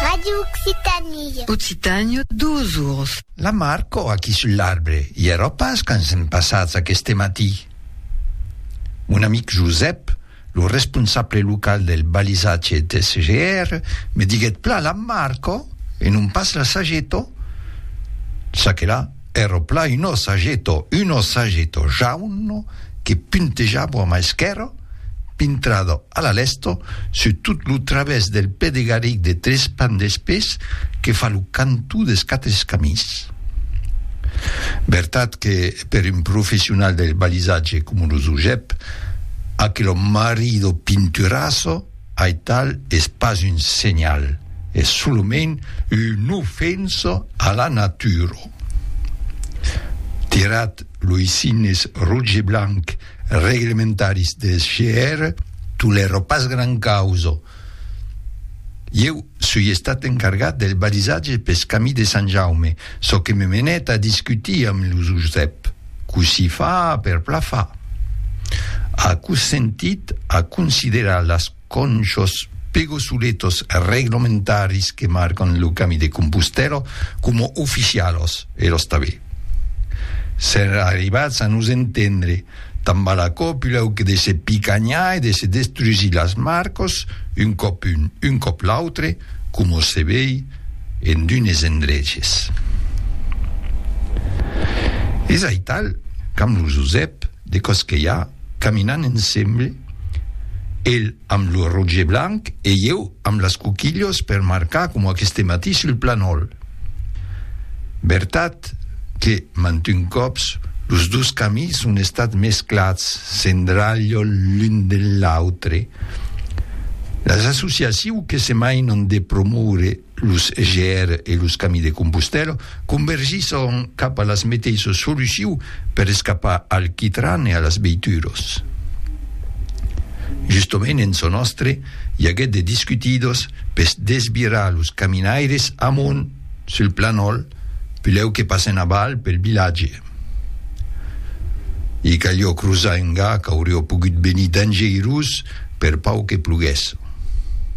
Radio Occitanie. Occitània, duas oras. La Marco aquí sul l'arbre. I èra pas quand sèm passats aqueste matí. Mon amic Josèp, lo responsable local del balisatge d'SGR, me diguèt plan la Marco e non pas la Sageto, ça que la. Ero plan un ossageto, un ossageto jauno que puntejavo a ma esquèrra, pintrado a la lèsta sur tot lo travèrs del pè de garric de tres pans d'espés que fa lo cantó des quatre escamins. Vertat que per un professional del balisatge coma lo Zujep, aquelo marido pinturasso, Aital es pas un senhal, es solament una ofensa a la natura. Tirat loi signes roig e blanc reglementaris deth GR, tolèro pas gran causa. Ieu soi estat encargat del balisatge peth camí de Sant Jaume, çò que me menèt a discutir amb lo Josep. Cossí fa per plafar? Aquò sentit a considerar las conchos pegosuletos reglamentaris que marcan lo Cami de Compostèla coma oficialos e los tabé. Sèr arribats a nos entendre, tan val aquò pulau que de se picanhar e de se destrusir las marcos un còp un, un còp l'autre, coma se vei, en d'unes endreches. Es aital qu'amb lo Josèp de Cosquelhar caminan ensemble, el amb lo roge blanc e ieu amb las coquilhos per marcar coma aqueste matí sul planòl. Vertat Malgrat que mantun còps los dos camins son estats mesclats sendralhol l'un de l'autre, las associaciu que se mainan de promoure los GR e los Camins de Compostèla convergisson cap a las meteissos soluciu per escapar al quitran e a las veituras. Justament en çò nòstre i aguèt de discutidos pes desvirar los caminaires amont Sul planòl, pilhèu que passen aval pel vilatge. I calió crosar un ga qu'aurió pogut venir dangeirós per pau que ploguèsse.